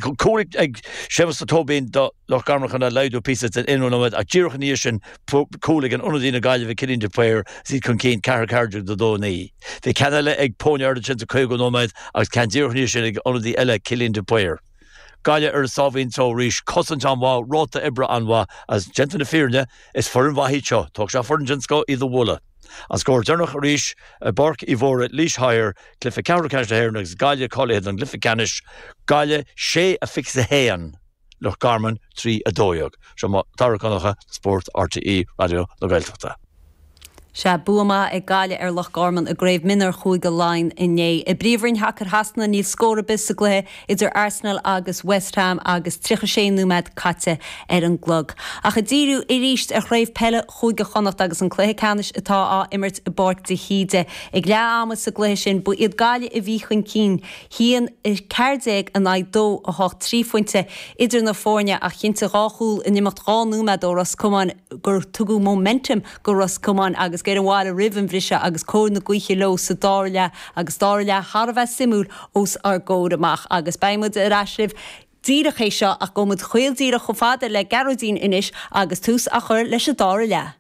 Cúl ag Séamus Ó Tóibín do Loch Garman chun é a laghdú píosa san aonú nóiméad ach díreach ina dhiaidh sin cúl ag ionadaí na Gaillimhe Cillian de Paor is iad chun cinn, 4, 14 do 2, 9. Bhí ceann eile ag Póin Aird ansin sa 50ú nóiméad agus ceann díreach ina dhiaidh sin ag ionadaí eile Cillian de Paor. Gaillimh ar a sáimhín só arís, cosaint an-mhaith, ráta oibre an-mhaith agus, déanta na fírinne, is foireann mhaith iad seo, tógfaidh sé foireann den scoth iad a bhualadh. An scór deireanach arís i bPáirc Uí Mhórdha, Laois Hire, cluiche ceathrú ceannais na hÉireann agus Gaillimh cáilithe don gcluiche ceannais, Gaillimh 6, 21 Loch Garman 3, 12. Seo Mac Dara Mac Donncha, Spórt RTÉ Raidió na Gaeltachta. Sea, bua maith ag Gaillimh ar Loch Garman i gCraobh Mionúr Chúige Laighean inné. I bPríomhroinn Shacair Shasana níl scór ar bith sa gcluiche idir Arsenal agus West Ham agus 36 nóiméad caite ar an gclog. Ach ag díriú arís ar chraobh peile Chúige Chonnacht agus an cluiche ceannais atá á imirt i bPáirc de hÍde. Ag leath ama sa gcluiche sin, ba iad Gaillimh a bhí chun cinn, 1, 14 in aghaidh 2, 8, trí phointe idir na foirne ach chinntigh dhá chúl in imeacht dhá nóiméad ó Ros Comáin gur tugadh momentum go Ros Comáin agus gearradh an bhearna roimh an bhriseadh agus cóir na gaoithe leo sa dara leath agus dara leath thar a bheith suimiúil os ár gcomhair amach agus beidh muid ar ais libh díreach théis seo ach gabhfaidh muid caol díreach chomh fada le Gearóidín anois agus tús á chur leis an dara leath.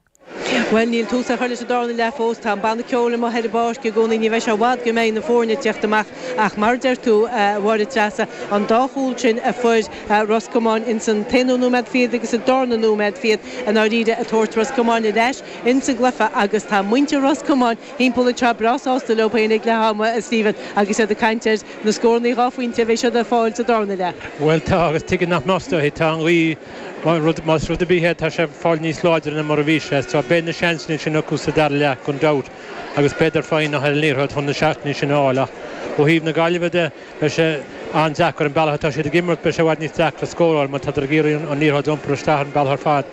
Bhuel, níl tús á chur leis an darna leath fós, tá an banna ceoil amuigh ar an bpáirc i gcónaí, ní bheidh sé i bhfad go mbeidh na foirne ag teacht amach ach mar a deir tú, a Mháire Treasa, an dá chúl sin a fuair Ros Comáin ins an t-aonú nóiméad fichead agus sa darna nóiméad fichead, i ndáiríre, ag tabhairt Ros Comáin ar ais ins an gcluiche agus tá muintir Ros Comáin thimpeall ag tráth breá sásta leo féin ag leath ama, a Stephen, agus iad ag caint ar na scórannaí dhá phointe a bheidh siad ag fáil sa darna leath. Bhuel, tá, agus tuige nach mbeadh is dóigh? Tá an ghaoth, má rud, más rud ar bith é, tá sé ag fáil níos láidre ná mar a bhí sé, so, beidh na seansanna sin acu sa dara leath gan dabht agus beidar foighneach ar an liathróid chun na seatanna sin a fháil ach ó thaobh na Gaillimhe de, beidh sé an-deacair, an bealach atá siad ag imirt, beidh sé i bhfad níos deacra scóráil mar tádar ag iarraidh an liathróid a iompar isteach an bealach ar fad.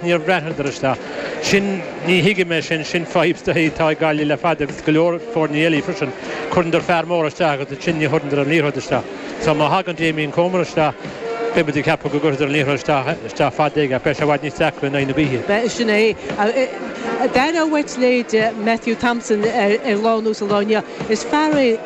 Ní bhreathnaíonndar isteach. Sin, ní thuigim é sin, sin fadhb atá ag Gaillimh le fada agus go leor foirní eile freisin. Cuireanndar fear mór isteach agus ansin ní chuireanndar an liathróid isteach. So má thagann Damien Comer isteach, beidh muid ag ceapadh go gcuirfidar an liathróid isteach, isteach fada aige ach beidh sé i bhfad níos deacra in aghaidh na gaoithe. Bhuel, sin é. D'aireofá uait leithéide Matthew Thompson ar lá ar nós an lá inniu. Is fear é.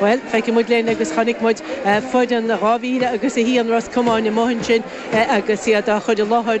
Bhuel, feicfidh muid linn agus chonaic muid foireann 2001 Ros Comáin amuigh ansin agus iad á gcur i láthair